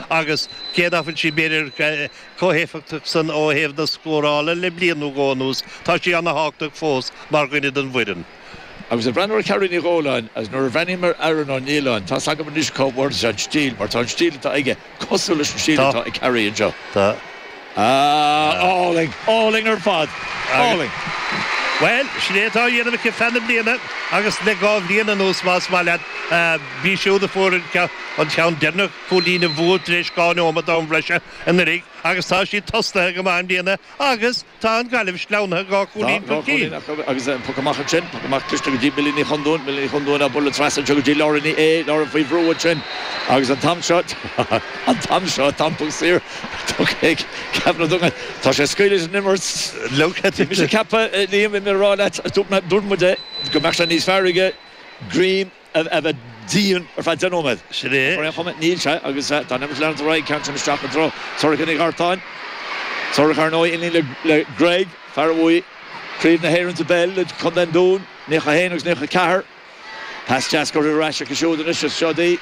agus cé nach bhfuil sí b'fhéidir chomh héifeachtach san ó thaobh na scórála le bliain nó dhó anuas, tá sí ana-thábhachtach fós mar dhuine den bhfoireann. Agus ag breathnú ar Carrie Ní Dhóláin, as nuair a bhreathnaím ar Aaron Ó Nialláin, tá's agam anois cá bhfuair sé an stíl, mar tá an stíl atá aige cosúil leis an stíl atá ag Carrie anseo. Tá. Ah, álainn, álainn ar fad, álainn. Bhuel, sin é atá á dhéanamh aici feadh na bliana agus le dhá bhliain anuas, más maith leat, b'í siúd a fuair an ceann deireanach, cúilín an bhua tar éis dhá neomat d'am breise anuraidh agus tá siad tosnaithe go maith i mbliana agus tá an Ghaillimh sleamhnaithe dhá chúilín chun cinn. Tá, dhá chúilín acu agus poc amach ansin, poc amach cliste go dtí Millie Ní Chondúin, Millie Ní Chondúin á bualadh trasna anseo go dtí Laura Ní Aodha, Laura faoi bhrú ansin agus an t-am seo, an t-am seo, tá an poc saor. Ceapaim na dtugann. Tá sé ag scaoileadh leis an imirt. Bhí mise ag ceapadh, a Liam, bhí mé ag rá leat, dúirt muid é, go mbeadh sé níos fearr aige Gavin a bheith dian ar feadh deich nóiméad. Sin é. Ach ar aon chuma, níl sé agus tá an imirt ag leanúint ar aghaidh, ceann sin isteach i dtreo Sorcha Nic Artáin. Sorcha, ar ndóigh, iníon le Greg, fear a bhuaigh Craobh na hÉireann sa bpeil le contae an Dúin, Naíocha a haon agus Naíocha a ceathair. Pas deas curtha ar ais acu siúd anois is seod í.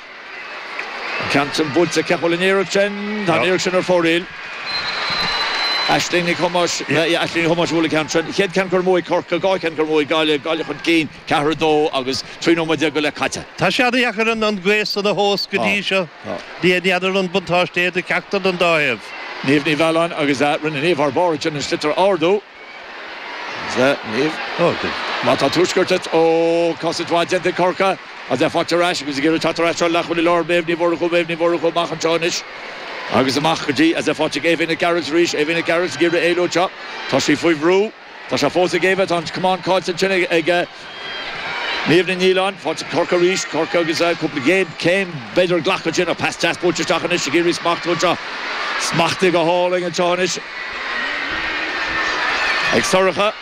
An ceann sin buailte ceap bhuel an iarracht sin tá an iarracht sin ar fóraoil. Aisling Nic Thomáis, Aisling Nic Thomáis a bhuail an ceann sin. Chéad ceann curtha amú ag Corcaigh, dhá cheann curtha amú ag Gaillimh, Gaillimh chun cinn ceathair a dó agus trí nóiméad déag go leith caite. Tá sé an-dheacair an gaoth san a thomhas go dtí seo. N'fheadar an buntáiste é do cheachtar den dá thaobh. Niamh Ní Mhealláin agus rinne Niamh thar barr ansin an sliotar a ardú. Tá, tá tuaisceart duit ó cosaint mhaith déanta ag Corcaigh is é faighte ar ais agus ag iarraidh teacht ar ais treo leathchúlaí láir Méabh Ní Mhurchú, Méabh Ní Mhurchú amach anseo anois agus amach go dtí is é fáite ag Éabha Nic Gearailt arís, Éabha Nic Gearailt ag iarraidh éalú anseo. Tá sí faoi bhrú. Tá sé fós ag Éabha. Tá an camán caillte ansin ag. Niamh Ní Nialláin, tá sé ag Corcaigh arís, Corcaigh agus cúpla coiscéim b'fhéidir a ghlacadh ansin ach pas deas buailte isteach anois ag iarraidh smachtú anseo. Smachtaithe go hálainn anseo anois ag Sorcha.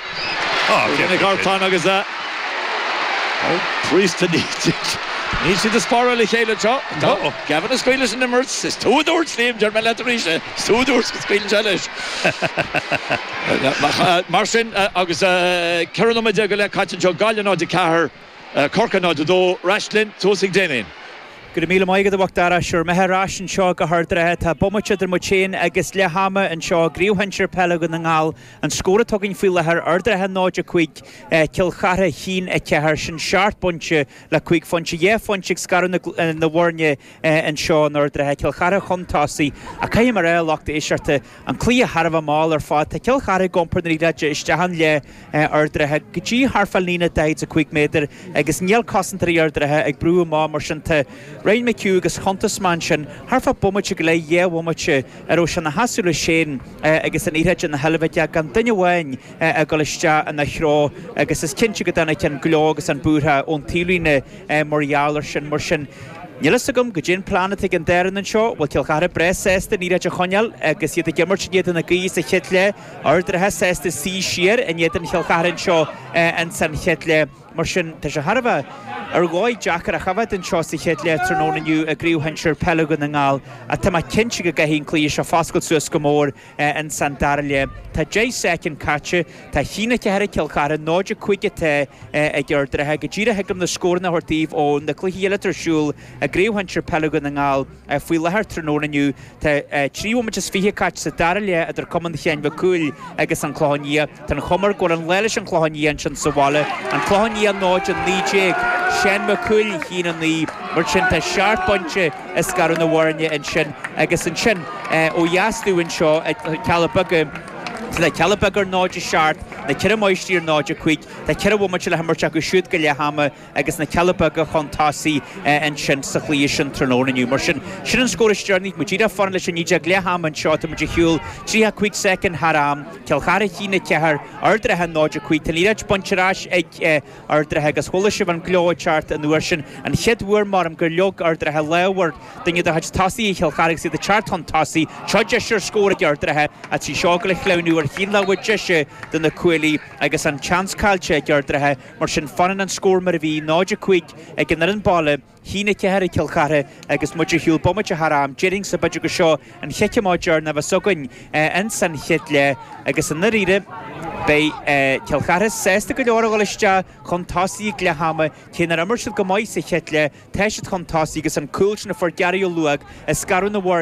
Sorcha Nic Artáin agus a Priest a Níltear. Níl siad ag spáráil a chéile anseo. Tá Gavin ag scaoileadh leis an imirt. Is tú a dúirt, Liam, deir mé leat arís é. Is tú a dúirt go scaoileann sé leis. Mar sin, agus ceithre nóiméad déag go leith caite anseo, Gaillimh 0, 4, Corcaigh 0, 2, ar ais linn suas chuig Damien. Go raibh míle maith agat, a Mhac Dara. Is é bhur mbeatha ar ais anseo go hArd an Rátha. Tá bomaite idir muid féin agus leath ama anseo i gCraobh Shinsir Peile Dhún na nGall. An scór atá againn faoi láthair, Ard an Rátha 0, 5, Cill Chartha a haon a 4. Sin seacht bpointe le cúig phointe, dhá phointe ag scaradh na bhfoirne. anseo in Ard an Rátha, Cill Chartha chun tosaigh, ach caithfidh mé a rá, a lucht éisteachta, an cluiche thar a bheith mall ar fad. Tá Cill Chartha ag iompar na liathróide isteach i leath Ard an Rátha go dtí thar fá líne 45 méadar agus níl cosantóirí Ard an Rátha ag brú amach mar sin tá Ryan McHugh agus chuntas mé ansin thar fá bomaite go leith dhá bhomaite a raibh sé ina sheasamh leis féin agus an liathróid ina sheilbh aige gan duine amháin a dul isteach ina threo agus is cinnte go dtáinig an gleo agus an búirtheadh ón taobhlíne. Mar gheall ar sin, mar sin, níl fhios agam caidé an plean atá ag an dá fhoireann anseo, bhfuil Cill Chartha breá sásta an liathróid a choinneáil agus iad ag imirt in éadan na gaoithe sa chéad leath, Ard an Rátha sásta suí siar in éadan Chill Chartha anseo ins an chéad leath. Mar sin, tá sé thar a bheith ar dhóigh deacair a choimhéad anseo sa chéad leath tráthnóna inniu i gCraobh Shinsir Peile Dhún na nGall. Ach tá mé cinnte go gcaithfidh an cluiche seo foscailt suas go mór Insan dara leath. Tá deich soicind caite. Tá a haon a ceathair ag Cill Chartha, 0-5 atá ag Ard an Rátha. Go díreach thig liom na scóranna a thabhairt daoibh ó na cluichí eile atá ar siúl i gCraobh Shinsir Peile Dhún na nGall faoi láthair. Tráthnóna inniu tá trí bhomaite is fiche caite sa dara leath idir Cumann Sheáin Mhic Cumhaill agus An Clochán Liath. Tá an chuma ar go bhfuil an lá leis an Clochán Liath ansin sa bhaile, an Clochán Liath 0 19. Seán Mac Cumhaill, a haon a naoi, mar sin tá seacht bpointe ag scaradh na bhfoirne ansin agus ansin ó dheas dúinn anseo i Cealla Beaga, tá na Cealla Beaga ar 0 7, na Ceithre Máistrí ar 0 5, tá ceithre bhomaite le himirt acu siúd go leath ama. agus na Cealla Beaga chun tosaigh ansin sa chluiche sin tráthnóna inniu. Mar sin, sin an scór is deireanaí. Muid díreach ag fanacht leis an fhideog leath ama anseo. Tá muid ar shiúl 35 soicind thar am. Cill Chartha 1-4, Ard an Rátha 0-5. Tá an liathróid bainte ar ais ag Ard an Rátha agus chuala sibh an gleo ceart an uair sin. An chéad uair, m'orm, gur leag Ard an Rátha lámh ar duine de chuid tosaithe Chill Chartha agus iad ag teacht chun tosaigh. Seo deis ar scór ag Ard an Rátha ach tá seo ag dul a shleamhnú ar thaobh na láimhe deise de na cuaillí agus an tseans caillte ag Ard an Rátha. Mar sin, fanann an scór mar a bhí, 0, 5, ag an fhoireann baile, 1-4 ag Cill Chartha agus muid ar shiúl bomaite thar am. Déarfainnse b'fhéidir gur seo an chic amach deireanach a bheas againn insan chéad leath agus i ndairíre, beidh Cill Chartha sásta go leor a dhul isteach chun tosaigh ag leath ama, cé nár imir siad go maith sa chéad leath, tá siad chun tosaigh agus an cúl sin a fuair Gary Molloy ag scaradh na bhfoirne,